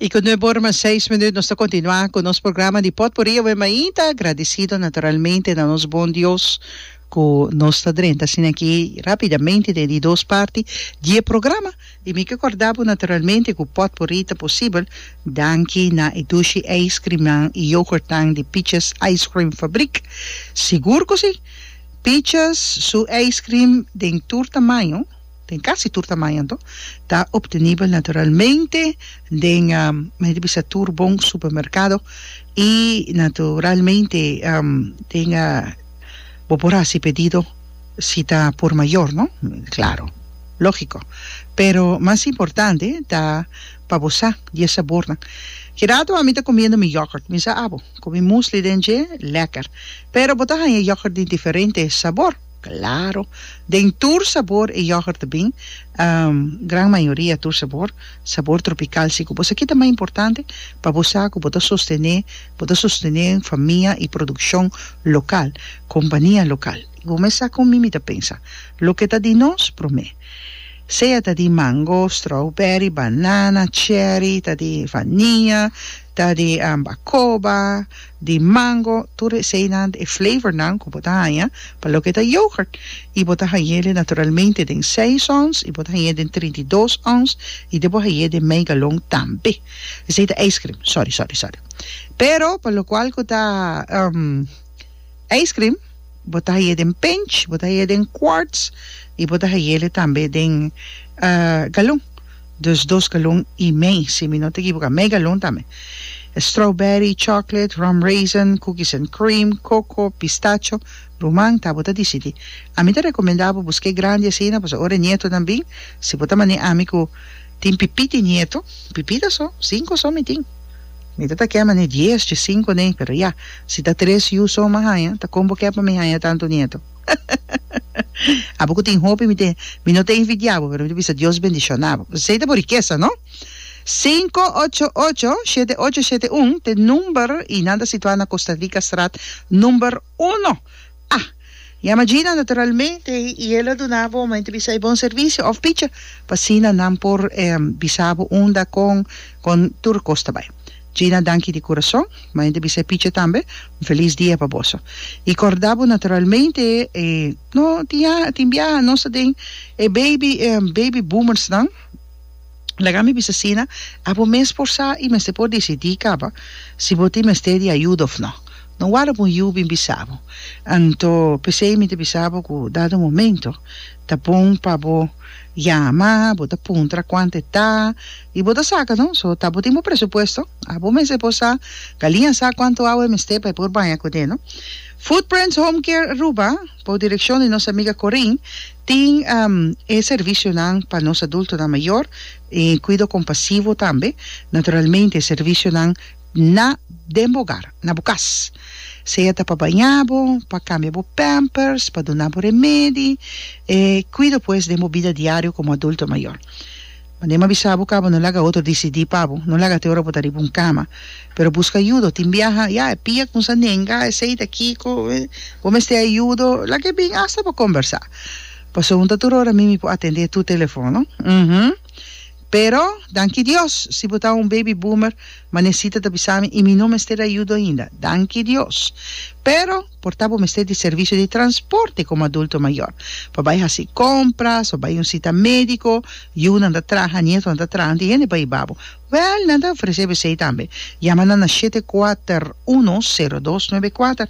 Y cu nuebe ora mas seis minuut nos ta continua cu nos programa di Potpourri awe mainta agradecido naturalmente na nos bon Dios cu nos ta drenta asina aki rapidamente den di dos parti di e programa y mi ke corda bo naturalmente cu Potpourri ta posibel danki na e dushi ijscreamnan y yoghurtnan di Peaches Ijscream Fabriek sigur cu si Peaches su ijscream den tur tamaño. den casi tur tamaño anto, ta obtenibel naturalmente den mi ta bisa tur bon supermercado y naturalmente den bo por haci pedido si ta por mayor no claro logico pero mas importante ta pa bo sa di e sabornan ki rato ami ta comiendo mi yoghurt mi sa abo cu mi musli den dje lekker pero bo ta haya yoghurt di diferente sabor. Claro. Den tur sabor e yoghurt ta bin, gran mayoria tur sabor, sabor tropical si ku bo sa ki ta mas importante pa bo sa ku bo ta sostené bo ta sostené famia i produkshon lokal, kompania lokal. I bo mes sa kon mi mi ta pensa, loke ta di nos promé, sea ta di mango, strawberry, banana, cherry, ta di vania, ta di bacoba, di mango, tur eseinan, e flavornan ku bo ta haña pa loke ta yoghurt, i bo ta hañ'é den naturalmente den seis ons, i bo ta hañ'é den trinta i dos ons, i den bo hañ'é den mei galon tambe. Esei ta ijskrim, sòri, sòri, sòri. Pero pa lokual ku ta ijskrim bo ta hañ'é den pinch, bo ta hañ'é den quarts, i bo ta hañ'é tambe den galon. Dus dos galon i mei, si mi no ta ekiboká, mei galon tambe. E strawberry, chocolate, rum raisin, cookies and cream, coco, pistacho, ruman, ta bo ta disidí. Ami ta rekomendá bo bo sk'é grandi asina, pasobra ora e nietonan bin, si bo ta manera ami ku tin pipí di nieto, pipíta so, sinku so mi tin. Mi ta ta kèp manera dies, dje sinku anei, pero ya, si ta tres yu so mi haña, ta kon bo kèp pa mi haña tantu nieto? Abo cu tin hopi mi te, mi no ta invidia bo, pero mi ta bisa Dios bendiciona bo. Esey ta bo rikesa, no? Sinku ocho ocho, shete ocho shete un, ta e number y nan ta situa na Costa Rica straat number uno. Ah! Yama Gina naturalmente y el a duna bo, mi ta bisa e bon servicio of bicha, pa asina nan por bisa bo unda, con, con tur cos ta bay. Gina danki di kurason, maya di bisa e pichi tambe, un felis dia pa boso. I korda bo naturalmente e no tin ya tin bia nos ta den e baby e baby boomers nan, laga mi bisa asina, a bo mes por sa i mester por disidi kaba si bo tin mester di ayuda of no. No warda bo un yu bin bisa bo. Anto p'esei mi ta bisa bo ku dado momento, Ta bon pa bo yama bo ta puntra cuant e ta y bo ta saca no so ta bo tin bo presupuesto abo mester por sa Galin a sa cuanto awa e mester pa e por baña cu den no Footprints Home Care Aruba bo direccion di nos amiga Corin tin e servicionan pa nos adultonan mayor y cuido compasivo tambe naturalmente e servicionan Na den bo ogar, na bo cas. Sea ta pa baña bo, pa cambia bo pampers, pa duna bo remedi, e cuido pues den bo bida diario como adulto mayor. Mande m'a bisa bo cabo no laga otro dicidi pa bo, no laga te ora bo ta riba un cama, pero busca ayudo, tin biaha ya e pia con sa nenga, esey ta kico, bo mester ayudo, laga e bin hasta pa conversa, pasobra no ta tur ora mimi por atende tur telefono, uhmm. Pero, danki Dios, si bo ta un baby boomer, manecita ta bisa mi y mi no mester ayudo ainda. Danki Dios. Pero, por ta bo mester di servicio di transporte como adulto mayor, pa bay haci compras o bay un cita medico, yunan ta traha, nietonan ta traha, tin hende pa iba bo. Well, nan ta ofrece besey tambe. Yama nan na shete kuater uno, sero dos, nuebe kuater.